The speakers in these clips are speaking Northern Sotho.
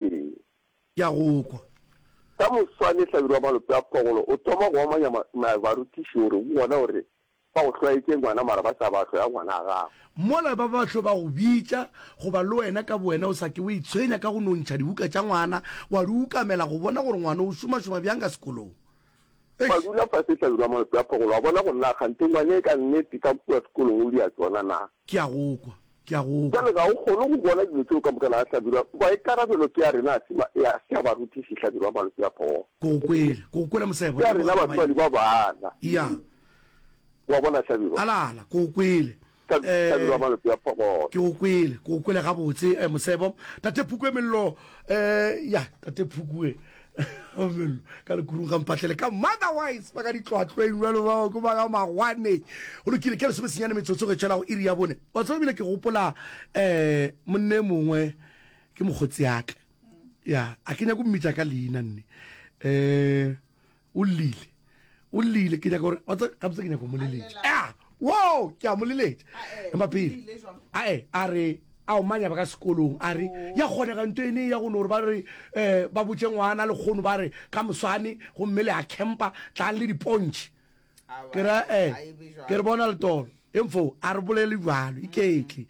Ee. Ke a go kwa. Ka moswane hlabirwa wa malope a phogolo o thoma go amanya barutiši gore bona gore ba go hlwaetše ngwana mara ba sa ba hloya ngwana a gago. Mola ba ba hlo ba go bitša goba le wena ka bowena o sa ke wa itshwenya ka go no ntšha dibuka tša ngwana wa di ukamela go bona gore ngwana o šomašoma bjang ka sekolong. Gwa dula fase hlabirwa malope a phogolo, a bona go nna kganthe ngwane ka nnete ka kua sekolong o di a tsona na. Ke a go kwa, ke a go kwa. Bjale ga o kgone go bona dilo tseo ka moka na, hlabirwa? Maikarabelo ke a rena, a se ma, a se a barutiši, hlabirwa malope a phogolo. Ke go kwele, ke go kwele mosebo. Ke a rena batswadi ba bana. Eya. O a bona, hlabirwa? Ala, ala, ke go kwele. Ee, ke go kwele, ke go kwele gabotse, eh, Mosebo. Tate Phukwe Mello, eh, ya, Tate Phukwe Mello, ka lekurung ga mpatlele ka motherwise, ba ka ditlwatlweng, jalo bao, ke ba ga magwane. Go lokile, ke lesome senyane metsotso ge tšhela go iri ya bone. Wa tseba bile ke gopola, eh, monne mongwe, ke mokgotsi yaka, ya, a ke nyako mmitša ka leina nne, eh, o llile o llile ke nyaka gore wa tsa gabotse ke nyaka go mo leletša a wo ke a mo leletša empa pele ae a re a o manya ba ka sekolong a re ya kgonega nto ene ya gone gore ba re um ba botse ngwana le kgono ba re ka moswane gomme le a campa tlang le dipontšhe ke ra um ke re bona letolo Info, A re bolele bjalo, iketle.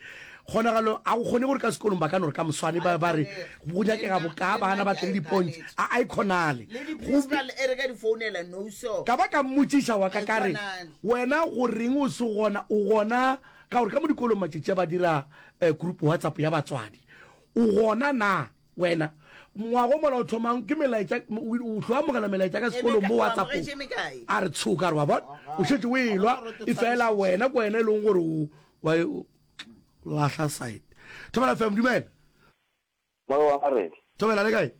Kgonagalo, A go kgone gore ka sekolong ba ka no re ka moswane ba be ba re, Go nyakega bokaa baana ba tle le dipontšhe? A-a, e kgonale. Go Ka ba ka mmotšiša wa ka ka re, Wena go reng o se gona? O gona? Ka gore ka mo dikolong matšatši a ba dira group WhatsApp ya batswadi. O gona naa? Wena ngwago mola o thomang ke melaetša o tlo amogela melaetša ka sekolong mo whatsapp a re tshoka re wa bona o šetse o elwa e fela wena ko wena e leng gore o wa lahla side thobela fam dumela thobela le kae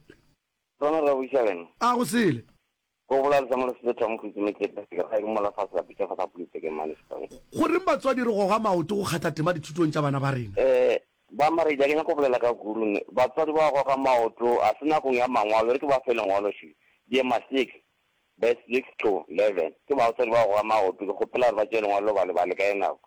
a go sele Go bola re samolose le thong go itsime tlepe se ka ga eng mola fa se lapetša fa sa pulitse ke mane song. Goreng batswadi re goga maoto go kgatla tema dithutong tša bana ba rena? Ee, Boammaaredi a ke nyako bolela ka gurun. Batswadi ba goga maoto, a se nakong ya mangwalo, e re ke ba fe lengwalo še. Diema 6, Bes 6-11. Ke baotswadi ba goga maoto, ke kgopela gore ba tšee lengwalo lo bale bale ka ye nako.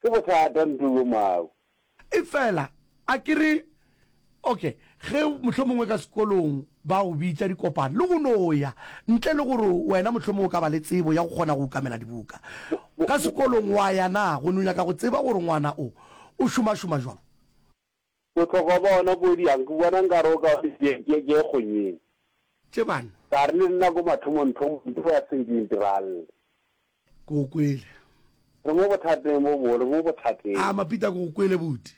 Ke bothata nto yo mau. Efela a ke re, Ok, ge mohlomongwe ka sekolong ba go bitša dikopano, le go no ya, ntle le gore wena mohlomongwe o ka ba le tsebo ya go kgona go okamela dibuka ka sekolong, wa ya na, go no nyaka go tseba gore ngwana o, o šomašoma bjang? Bohlokwa bja ona kudu yang? Ke bona nkare o ka ba dibeke tše kgonyeng. Tše bane. Ka re le nna ko mathomongthomong ntho ya se nke e ntiragalle. Ke go kwele. Re mo bothateng bo bogolo, re mo bothateng. A Mapita, ke go kwele buti.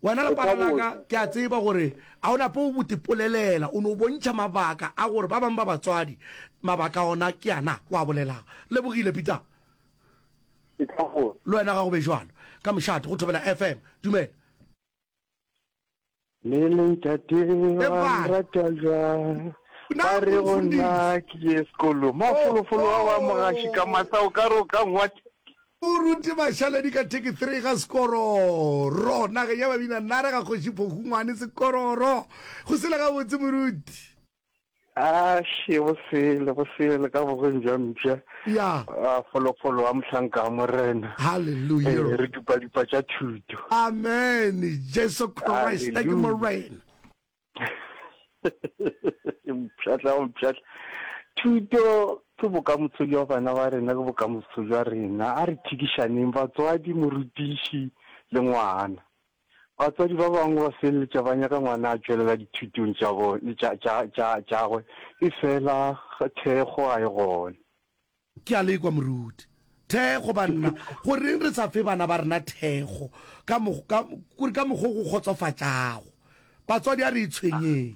Wena lepara la ka, ke a tseba gore a o nape o botipolelela, o no bontšha mabaka a gore ba bangwe ba batswadi mabaka ona ke ana o a bolelago. Lebogile, Peter. Sehlagong. Le wena ga go be bjalo. Ka mošate, go thobela FM. Dumela. Le leitate ba nrata bjang ba re go nna ke ye sekolo mafolofolo wa wa mogaši ka masa o ka re o ka ngwat o rute bašaledi ka teki three ga sekororo nageng ya babina nare ga kgoši phokungwane sekororo go sele gabotse moruti A še go sele go sele ka bogweng jwa mpša ya a folofolo wa mohlanka wa morena Eh, hallelujah re dupa dupa tša thuto amen jesu christ thank you Hallelujah. morena mpšatla o mpšatla thuto ke bokamoso jwa bana ba rena ke bokamoso jwa rena a re thikišaneng batswadi morutiši le ngwana Batswadi ba bangwe ba feleletša ba nyaka ngwana a tšwelela dithutong tša bone, tša, tša, tša, tšagwe, efela thekgo ga e gona. Ke a le kwa, moruti. Thekgo, banna! Goreng re sa fe bana ba rena thekgo ka, ka, ka mokgwa o go kgotsofatšago? Batswadi, a re itshwenyeng.